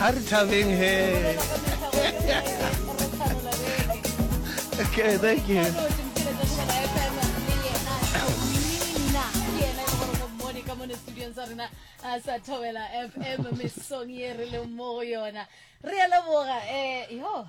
a re thabeng he okay thank you sa thobela fm mesong ye re leng mo go yona re a leboga um yo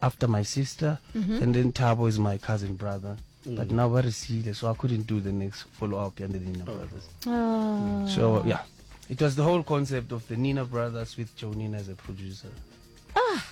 after my sister mm -hmm. and then Tabo is my cousin brother mm. but now very serious so I couldn't do the next follow up and the Nina oh. brothers oh. so yeah it was the whole concept of the Nina brothers with Joe Nina as a producer ah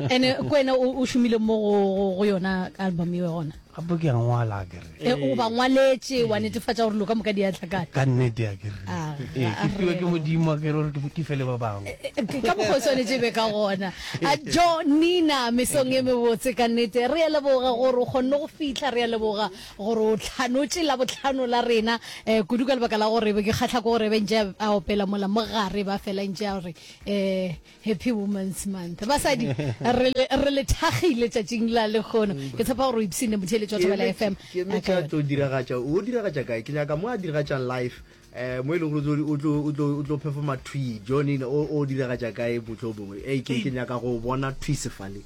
and kwena o shumile mo go yona album eo gona Gape ke a ngwala a ke re. E, o ba ngwaletše, wa netefatša gore dilo ka moka di a tla kae? Ka nnete a ke re. A, E, a ke fiwe re. ke Modimo a ke re gore ke, ke fe le ba bangwe. E, e, Ka mokgwa o swanetše e be ka gona. A, Jo, Nina, mesong e mebotse ka nnete. Re a leboga gore o kgonne go fihla. Re a leboga gore o hlanotše Labohlano la rena, eh, kudu ka lebaka la gore be ke kgahla ke gore e be e ntše a, a opela mola mo gare, e be a fela e ntše a re, eh, Happy Women's Month. Basadi, re le, re le thagile tšatšing la lekgono. Ke tshepa gore o ipsine motheeletši wa Thobela FM. Ke eme ka tlo diragatša, o diragatša kae? Ke nyaka mo a diragatšang live, eh, mo e le gore o tlo, o tlo, o tlo performa thwi, Johnny, o, o diragatša kae mohlomongwe? Ei, ke, ke nyaka go bona thwi sefale.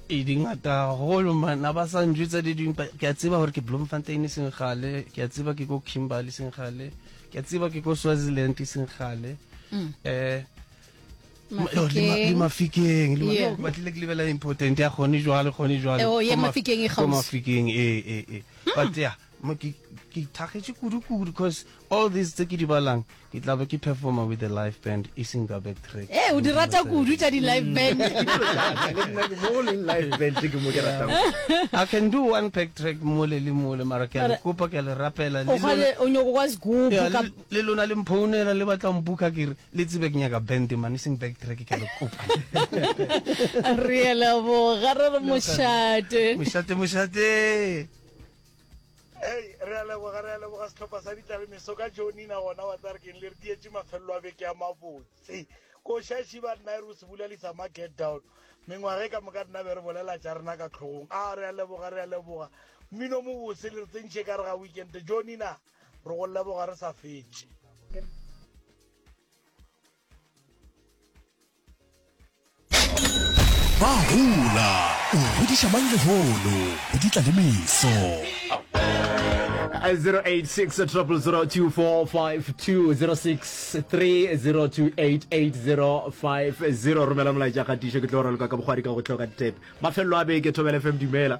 e di ngata haholo man a ba sa njwetsa di dingwe but ke a tseba gore ke bloemfontein e seng gale ke a tseba ke ko kimberley e seng gale ke a tseba ke ko swaziland e seng gale um le mafikeng ba tlile ke lebela important ya gone jwale gone jwale oh, ko mafikeng ee ee ee hmm. but ya ke thagetse kudu-kudu because all these tse ke di balang ke tla be ke performer with the live band e seng ka back track ee eh, o di rata kudu tša di-live hmm. band i can do one back track mole le mole mara ke le kopa ke le rapela le lona le mphounela le batla mpuka kere Le tsebe ke nyaka band man, e seng back track ke a le kopa. Re a leboga re re mošate. Mošate mošate. Hey, re a leboga re a leboga setlhopha sa ditlalemeso ka jonina gona wa tsare keng le re dietse mafelelo a beke ya mabotse ko shashi ba nna e re o se bulalisa ma get down mengwage ka moka nna be re bolela tša rena ka tlhogong a re a leboga re a leboga mmino mobose le re tsentšhe ka re ga weekend jonina re go leboga re sa fetše ba hola o godiša mang lehono go di tla le meso 0886002452 romela molaetša kgatišo ke tlo raloka ka bogwadi ka go tloka ditep mafelelo a beke thobela fm dumela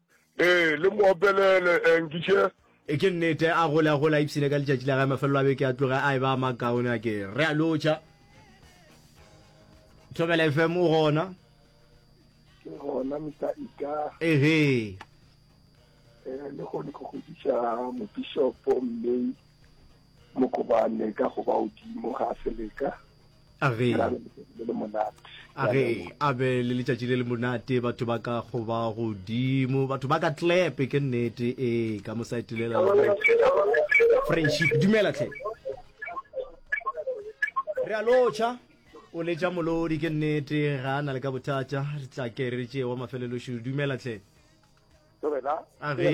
Ee, le mo opelele, Enkiše. E ke nnete, a gole a gole a ipshine ka letšatši la gae, mafelelo a beke a tloge a e ba a makaone a ke re a lotšha. Thobela FM o gona? Ke gona Mr. Ika. Ehe. Eh, le gone go godiša mobishopo mme mokobane ka go ba odimo ga seleka age age a be le letšatši le le monate batho ba ka go ba godimo batho ba ka tlepe ke nnete ee ka mo saetelela friendship dumela tlhe re a lotšha o letša molodi ke nnete ga a na le ka bothata re tla ke re tšee wa mafelelošo dumela tlhe age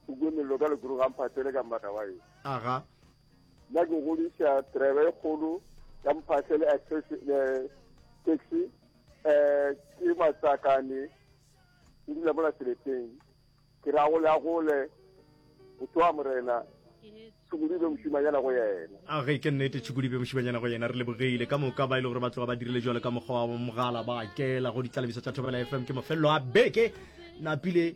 o kwe mello ka lekuru ga mphatele ka mmata wa e aga la go godiša tereba e kgolo ya mphahle le taxi um ke matsakane ke dula mola seleteng ke ra gole a gole motho wa morena tšhukudibe mošimanyana go yena a ge ke nnete tšhukudibe mošimanyana go yena re lebogile ka moka ba e le gore ba tloga ba dirile jalo ka mokgwa wa mogala ba kela go ditlalebiso tša thobela fm ke mafelelo a beke napile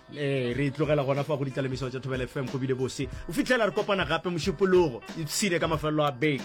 ee re tlogela gona fa go ditlalemisao tša thobela fm go bile bose o fitlhela re kopana gape mošupologo ipshine ka mafelelo a beke